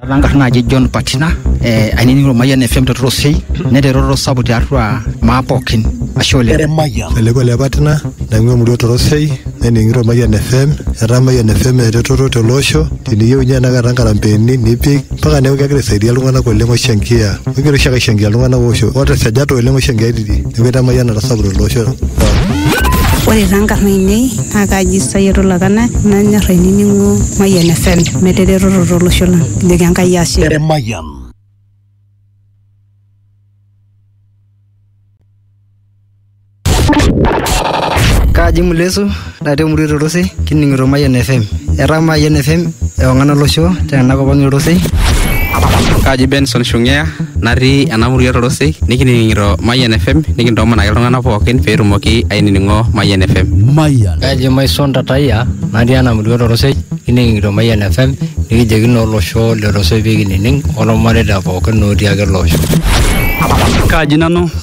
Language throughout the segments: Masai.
Taata nkarn naaji John Patina eh, ainining'o Ormayian FM te Torosei neeta eretoto sapuk tiatua maa pookin ashe oleng. Eleko le Patina naing'ua emurua Torosei nening'ito Ormayian FM etaa Ormayian FM eretoto tele osho teniyieu ninye enakata nkarambeeni nipik mpaka neeku kegira aisaidia iltung'anak oleng oishangia kegira oshiake aishangia iltung'anak oosho otesajate oleng oishangia tidi neeku etaa emayiana natasapuka tele osho Ore taa nkarn ainei naa kaaji Sayiet Olakana nanyor ainining'o Mayian FM meeta eretoto tolosho lang kijoki Enkai ashe. Eremayian. Kaji Mulesu natii emurua Etotosi kining'ito Mayian FM. Etaa Mayian FM ewang'an olosho tenakop ang' Etotosi. Kaji Benson Shungea natii ena murua Etotosi nikining'ito Mayian FM nikintoomon ake iltung'anak pookin pee etumoki ainining'o Mayian FM. Mayian. Kaji Maison Tatayia natii ena murua Etotosi kining'ito Mayian FM nikijoki naa olosho le Etotosi pee kinining' olmareita pookin otii ake ele osho. Kaji nanu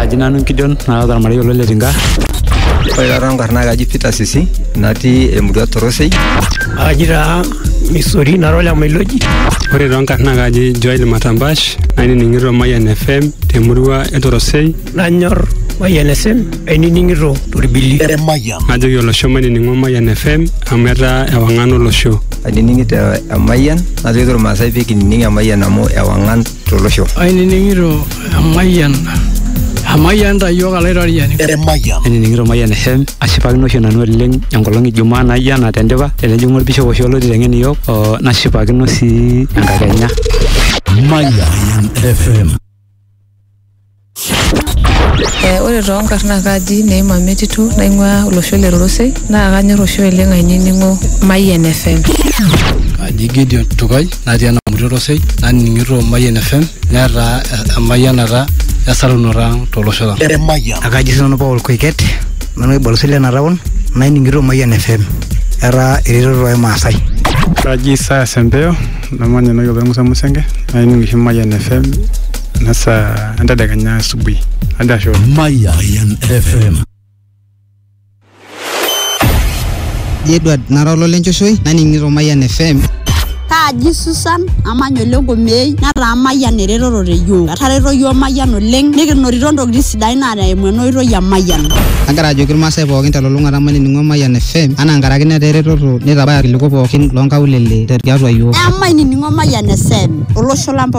Aji nanu Gideon naata ormarei olo le Tinga. Ore taata enkarna ai kaji Peter Sisi natii emurua Torosei. Aji taa Misori nara ole Mailoji. Ore too nkarn naa kaji Joel Matambash nainining'ito Mayian FM temurua e Torosei. Nanyor Mayian FM ainining'ito torbili. Najoki olosho mainining'o Mayian FM amu etaa ewang'an olosho. Ainining'ito Emayian najoki irmaasai pee kinining Emayian amu ewang'an tolosho. Ainining'ito emayian emayian ta iyiook alaitoriani. Emayian. Ainining'ito Mayian FM ashipakino oshi nanu oleng enkolong e Jumaa naijo ena tendipa tenejing'u olbishop oshi olo aiteng'en iyiook oo nashipakino sii enkakenya. Mayian FM. Eh, ore too nkarn naa kaji Neima Metitu naing'uaa olosho le Rorosei naa kanyor oshi oleng ainining'o Mayian FM. Aji Gideon Tukai natii Enamuti Orosei naning'ito Mayian FM netaa emayianata esarunoto ang tolosho lang. Ekaji sinanu Paul Koiket nanu oibalosi lena taon naining'ito Mayian FM etaa eretoto ai Maasai. Kaji Isaya Sempeo namanya enewueji opa Musa Musenge naining oshi Mayian FM ena saa entedekenya asubuhi hadi ashe oleng. Mayan FM. Edward nara ololenchoshoi naning'ito Mayian FM. Kaaji Susan amanya ole Ngomei nataa Mayian eretoto te yiok. Etareto yiok Mayian oleng nikinotito ntokitin ntokitin sidain naa eimu ena oitoi e Mayian. Agira ajoki irmaasai pookin telulung'ata mainining'o Mayian FM anaa nkaraki netaa eretoto neitabaya irkiliku pookin loonkaulele tiatua iyiook. Emainining'o Mayian FM olosho lang pookin.